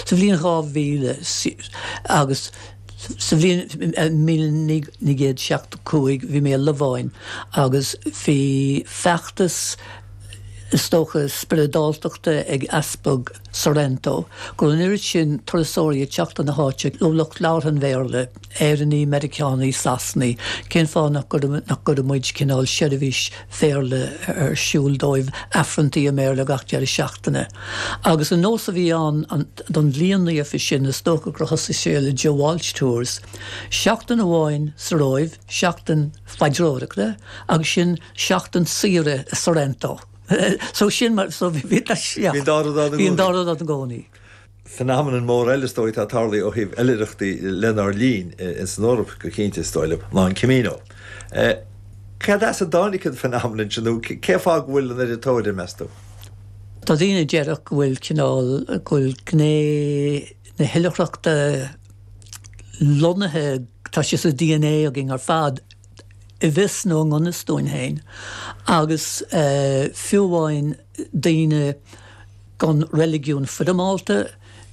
Sa bhliain 2000 agus sa bhliain míle naoi gcéad seachtó cúig bhí mé i Lováin agus bhí feachtas, is dócha, spioradáltachta ag Easpag Sorrento go raibh an oiread sin turasóirí ag teacht chun na háite, lucht labhartha an Bhéarla. Éireannaigh, Meiriceánaigh, Sasanaigh, cén fáth nach gcuireann, nach gcuireann muid cineál seirbhís Bhéarla ar siúl dóibh, Aifreanntaí i mBéarla gach deireadh seachtaine. Agus an nós a bhí ann, an, don bhliain naofa sin, is dócha gur thosaigh sé le Joe Walsh Tours, seachtain amháin sa Róimh, seachtain paidreoireachta agus ansin seachtain saoire i Sorrento. So sin mar, so bhí, bhí, bhí an dá rud ann i gcónaí. Phenomenon mór eile is dóigh atá ag tarlú ó thaobh oilithreachtaí lenár linn, ins an Eoraip go cinnte, is dóigh liom, ná an Camino. Cad as a dtáinig an phenomenon sin nó cén fáth go bhfuil an oiread tóir air, meas tú? Tá daoine a déarfadh go bhfuil cineál, go bhfuil gné na hoilithreachta lonnaithe, tá sé sa DNA againn ar fad, i bhfios nó i ngan fhios dúinn féin. Agus fiú amháin. daoine gan reiligiún foirmeálta,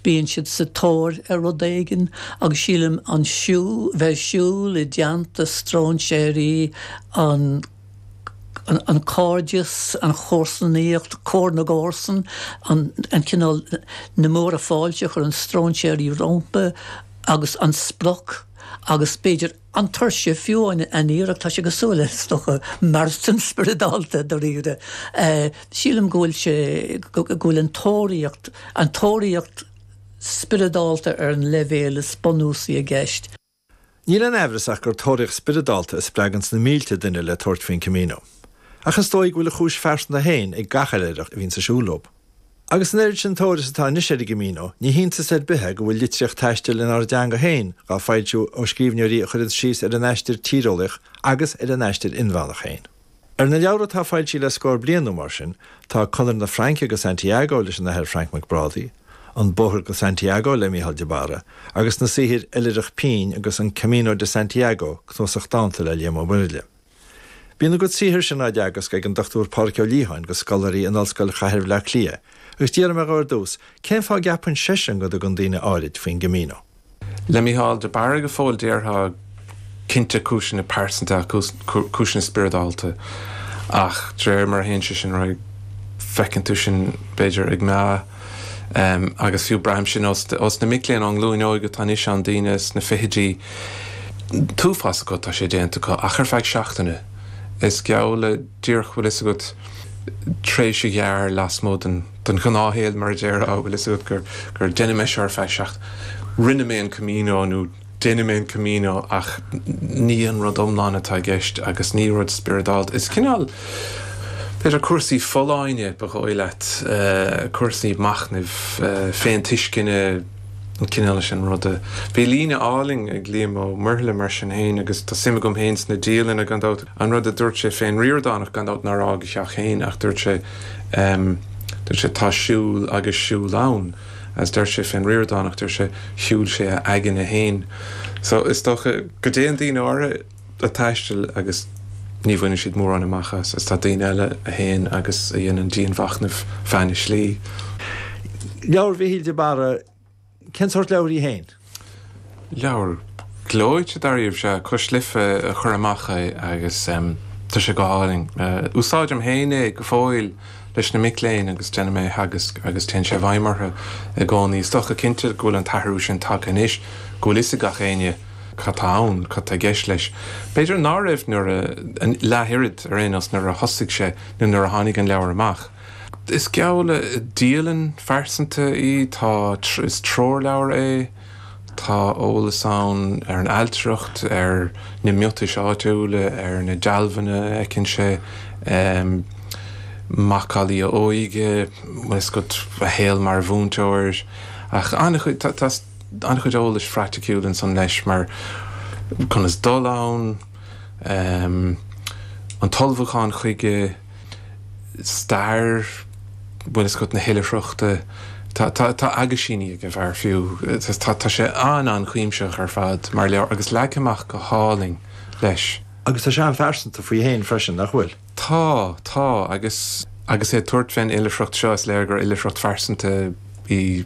bíonn siad sa tóir ar rud éigin, agus sílim an bheith ag siúl i dteannta stróinséirí, an cairdeas, an chomharsanaíocht, comhar na gcomharsan, an cineál na múrtha fáilte a chuireann stróinséirí rompu agus an sprioc agus b'fhéidir, An tuirse, fiú an iarracht, tá sé cosúil le is dócha marathon spioradálta, dáiríre. Sílim go bhfuil sé, go bhfuil an tóraíocht, an tóraíocht spioradálta ar an leibhéal is bunúsaí i gceist. Níl aon aimhreas ach gur tóraíocht spioradálta a spreaganns na mílte duine le tabhairt faoin Camino. Ach is dóigh go bhfuil a chúis phearsanta féin ag gach uile oilithreach a bhíonns ag siúl leob. Agus an oiread sin tóir is atá anois ar an gCamino, ní hiontas ar bith é go bhfuil litríocht taistil inár dteanga féin á foilsiú ó scríbhneoirí a chuireanns síos ar a n-aistear tíreolaíoch agus ar a n-aistear inmheánach féin. Ar na leabhra atá foilsithe le scór bliain nó mar sin, tá Conair na Fraince go Santiago leis an Athair Frainc Mac Brádaigh, An Bóthar go Santiago le Mícheál de Barra, agus na saothair Oilithreach Pinn agus An Camino de Santiago, cnuasach dánta le Liam Ó Muirthile. Bíonn a gcuid saothair sin á dteagasc ag an Dr Pádraig Ó Liatháin do scoláirí in Ollscoil Chathair Bhaile Átha Cliath agus d'fhiafraigh mé dhó ar dtús cén fáth a gceapann seisean go dtugann daoine áirid faoin gCamino. Le Mícheál de Barra go fóill déarfá cinnte cúiseanna pearsanta ach cúiseanna spioradálta ach de réir mar a théann sé sin ar aghaidh feiceann tú sin b'fhéidir ag meath. agus fiú braithim sin ó, is na mic léinn ón nglúin óig atá anois ann, daoine sna fichidí, t-uafás acu atá sé déanta acu ach ar feadh seachtaine. Is geall le, díreach bhfuil fhios agat tréimhse ghearr lasmuigh den den ghnáthshaol mar a déarfá bhfuil fhios agat gur gur dhein mé seo ar feadh seachtaine, rinne mé an Camino nó, Déanfaidh mé an Camino ach ní an rud iomlán atá i gceist agus ní rud spioradálta. Is cineál, b'fhéidir, cúrsaí folláine, ba dhóigh leat, cúrsaí machnaimh, féintuisceana, an cineál sin ruda. Bhí líne álainn ag Liam Ó Muirthile mar sin féin agus tá suim agam féin sna dialanna, gan dabht, an rud a dúirt sé fén Ríordánach, gan dabht, nár fhág a theach féin ach dúirt sé, dúirt sé, 'tá siúl agus siúl ann. Is deir sé fén Ríordánach, deir sé, shiúil sé a aigne féin. So, is dócha go dtéann daoine áirithe a' taisteal agus ní bhaineann siad mórán amach as is tá daoine eile a théann agus a dhéanann dianmhachnamh feadh na slí. Leabhar Mhichíl de Barra, cén sórt leabhar í fhéin? Leabhar gleoite dáiríribh is ea, Cois Life a chuir amach é agus tá sé go hálainn. Úsáidim féin é go fóill leis na mic léinn agus déanaim é a theagasc agus téann sé i bhfeidhm orthu i gcónaí. Is dócha cinnte go bhfuil an t-athrú sin tagtha anois go bhfuil 'fhios ag gach éinne cad tá ann, cad tá i gceist leis. B'fhéidir ná raibh nuair a, leath oiread ar aon nós, nuair a thosaigh sé nó nuair a tháinig an leabhar amach. Is geall le dialann phearsanta í. Tá, is treoirleabhar é. Tá eolas ann ar an ailtireacht, ar na miotais áitiúla, ar na dealbhanna a fheiceann sé, macallaí a óige, bhfuil fhios agat, a shaol mar mhúinteoir. Ach an-chuid, tá an-chuid eolais phraiticiúil ansan leis mar conas dul ann, an t-ullmhúchán chuige, stair bhfuil fhios agat na hoilithreachta. Tá aguisíní ag an bhfear fiú. Tá sé an-an-chuimsitheach ar fad mar leabhar agus leagtha amach go hálainn leis. Agus tá sé an-phearsanta faoi fhéin freisin, nach bhfuil? Tá, tá. Agus é ag tabhairt fén oilithreacht seo, is léir gur oilithreacht phearsanta í.